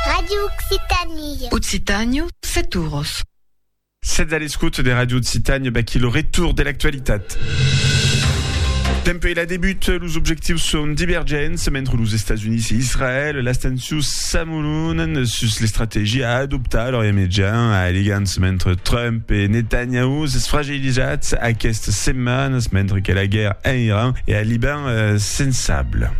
Radio Occitanie. Occitània, set oros. Sètz a l'escòt de Radio Occitània, vaquí lo retour de l'actualitat. Dempuèi la debut, los objectius son divergents mentre los Estats Units e Israèl, las tensions s'amolonan sus l'estrategia a adoptar a l'Orient Mejan, alegants mentre Trump e Netanyahu s'esfragellan. Utilizats aquestes setmanas mentre que la guèrra en Iran e al Liban sensable.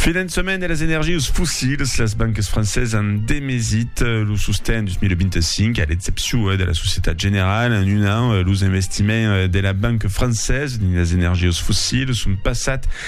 Finançament de las energius fossils, las bancas francesas an demesit lo sosten 2025, a l'excepcion de la Societat Generale. En un an, los investiments de la banca francesa dins las energius fossils son passats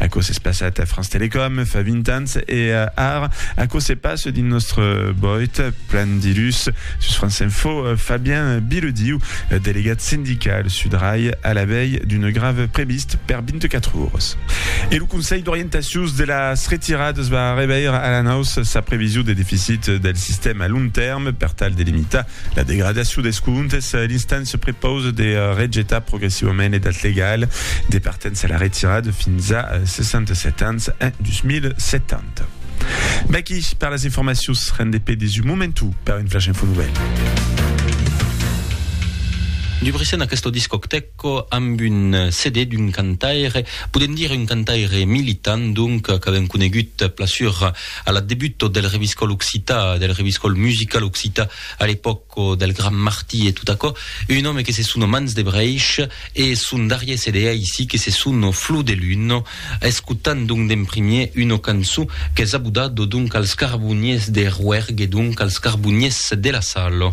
Aquò s'es passat a France Télécom fa 20 ans e ara aquò se passe dins nòstre boit plan dilhus sus France Info Fabien Bilediu, delegat sindical sud Rai a la vei d'una grèva previst per 24 oras. E lo Conselh d'orientacius de las retiradas va reveir a la naus sa prevision de deficit del sistèma a long tèrme per tal de limitar La degradacion des comptes, l'instant se prepause de rejetar progressivament edat legal de partença a la retirada fins a 67 ans en 2070. V'aquí per las informacions, rendé pe des un momentu per un flash info nouvelle. Dubricen aquesta discotèca. Quò amb un CD d'un cantaire, podem dire un cantaire militant donc, qu'avèm conegut plasur a la debuta del Reviscòl Occità, del Reviscòl Musical Occità a l'epòca del Gran Martí e tot aquò, un òme que se sono Mans de Brèish e son darrièr CD aicí que se sono Flor de Luna. Escotam donc d'en primièr una cançon qu'es abodada donc als carboniers de Rouergue donc als carboniers de la Sala.